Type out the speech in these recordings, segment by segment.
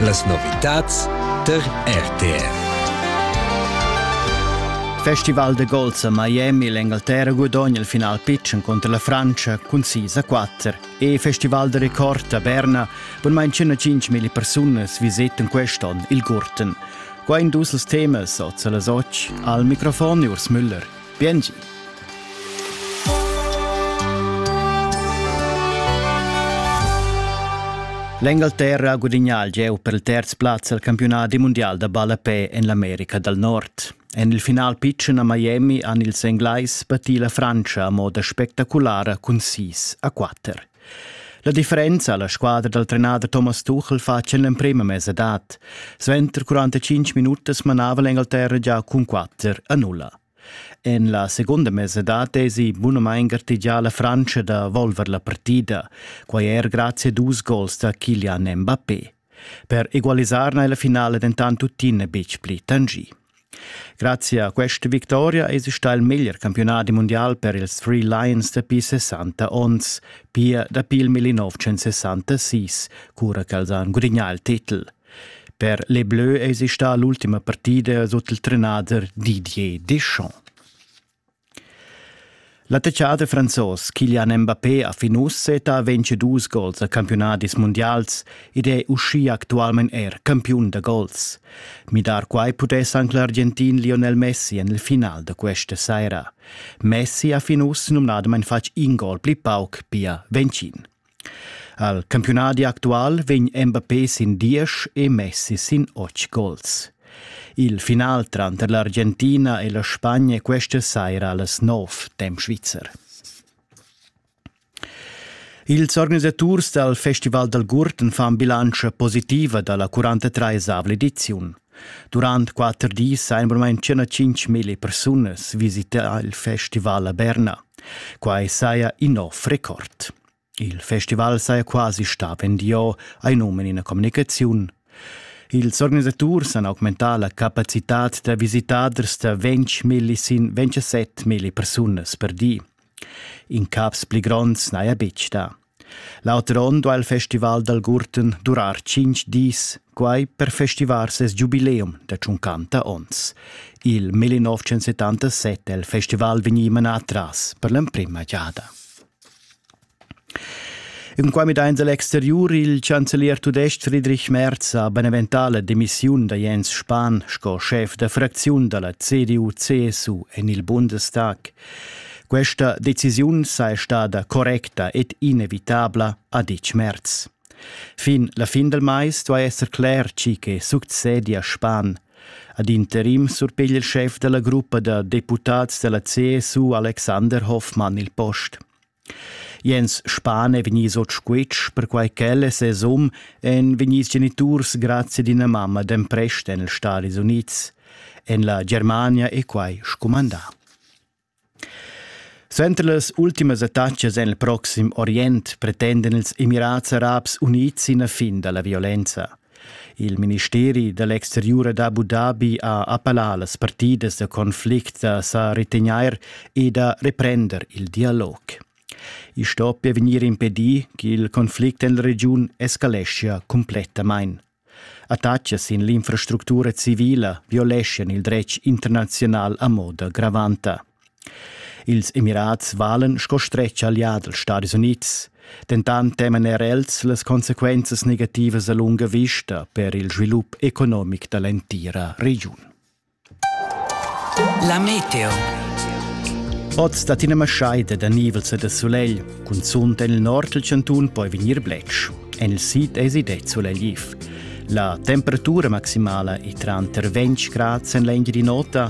Las novitads tar RTR. Festival de golf a Miami l'Engalterra gudogna il final pitschen contro la Francia cun 6 a 4 e Festival de Record a Berna bunmain 105.000 persunas visiten quest'on il Gurten. Qua in dus temas oz las 8 al microfon Urs Müller. Biengi. L'Engalterra ha gudignà il gieu per il terz plaz al campiunat mundial da ballapè en l'America dal Nord. En il final pitschen a Miami han ils Englais patì la Frantscha a moda spectaculara cun 6 a 4. La differenza alla squadra dal trenader Thomas Tuchel fa en l'emprema mesa dat. Sventer 45 minutas manava l'Engalterra già cun 4 a 0. En la seconda mesa dat esi bunamain gartegià la Frantscha da volver la partida, quai er grazie a dus gols da Kilian Mbappé. Per egualisar n'è la finala dentant tuttina betg pli tangì. Grazie a questa victoria è stà il meglier campionat mondial per ils Three Lions dapi 60 onns, pia dapi il 1966, cura ch'els han gudagnà il titel. Per les Bleus è stà l'ultima partida sut il trenader Didier Deschamps. L'attacchader franzos Kylian Mbappé ha fin uss seta ventschi dus gols a campiunadis mundials ed è uschia actualmain er campiun da gols. Midar quai pudess anc l'Argentin Lionel Messi en il final da questa saira. Messi ha fin uss numnadamain fatg in gol pli pauc, pia Vencin. Al campiunadi actual vegn Mbappé sin diesch e Messi sin otg gols. Il final tranter l'Argentina e la Spagna questa saira allas nov temp svizzer. Ils organisaturs dal Festival dal Gurten fan bilantscha positiva da la 43 ediziun. Durant quatter dis ha almain circa tschintg persunas visità il festival a Berna. Quai saja in nov record. Il festival saja quasi stà vendiò ai num in ina communicaziun. Ils organisaturs han augmentà la capacitad da visitaders da 20.000 sin 27.000 persunas per di. In caps pli gronds n'haja betg dà. L'auter onn duha il festival dal Gurten durar tschinch dis, quai per festivar ses giubileum da tschuncanta ons. Il 1977 è il festival vegnì manà tras per l'emprima giada. In qua midains a l'exteriur il chancelier tudestg Friedrich Merz ha beneventà la demissiun da Jens Spahn sco schef da fracziun da la CDU-CSU en il Bundestag. Questa decisiun saja stada correcta ed inevitabla, ha ditg Merz. Fin la fin del mais duai esser cler tgi che succedia Span. Ad interim surpiglia il schef della gruppa da deputads della CSU Alexander Hoffmann il post. Jens Spahn è vegnius ord squitsch perquai ch'el e ses um ein vegnis geniturs grazie ad ina mamma d'emprest en els Stadis Unids. En la Germania è quai scumandà. Suenter las ultimas attacas en il proxim Orient pretendan ils Emirats Arabs Unids ina fin da la violenza. Il ministeri da l'exteriur da Abu Dhabi ha appellà las partidas da conflict da sa retegnair e da reprender il dialog. I stoppia vegnir impedì ch'il conflict en la regiun escaleschia cumplettamain. Attacchi sin l'infrastructura civila violeschan il dretg internaziunal a moda gravanta. Ils Emirats valan sco stretg allià dals Stadis Unids, dentant teman er els las consequenzas negativas a lunga vista per il svilup economic da l'entira regiun. La meteo. Oz dat ina maschaida da nivels e da sulegl, cunzunt en il nord dal chantun poi vegnir bletsch. En il sid èsi det sulegliv. La temperatura maximala è tranter 20 grad en l'engiadin'ota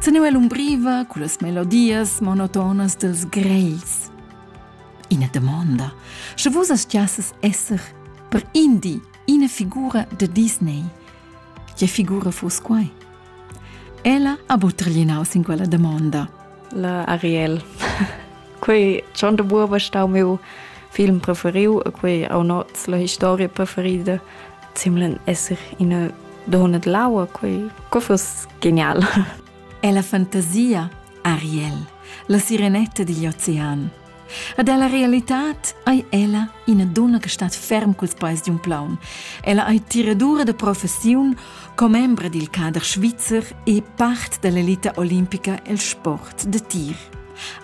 Teneu l'umbriva con las melodias monotonas dels greis. Ina domanda, sche vus astiasses esser per indi ina figura de Disney. Che figura fus quai? Ella ha buttaglinaus in quella domanda. La Ariel. quei schon de buoba stau meu film preferiu e quei au noz la historia preferida zimlen esser in a donna de laua quei co fus genial. È la fantasia Ariel, la sirenetta digl ocean. Ed ella realitad ei ella ina dunna che stat ferm culs peis di un plaun. Ella ei tiradura de professiun, commembra dil cader svizzer e part dell'elita olimpica el sport de tir.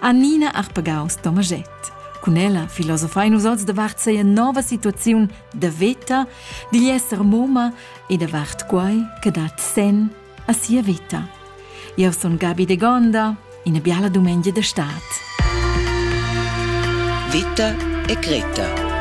Annina Arpegaus-Tomaschett. Cun ella filosofein nus oz davart seia nova situaziun da veta, digl esser moma e davart quai che dat sen a sia vita. Io sun Gabi de Gonda, ina biala dumengia d'estate. Vita e Greta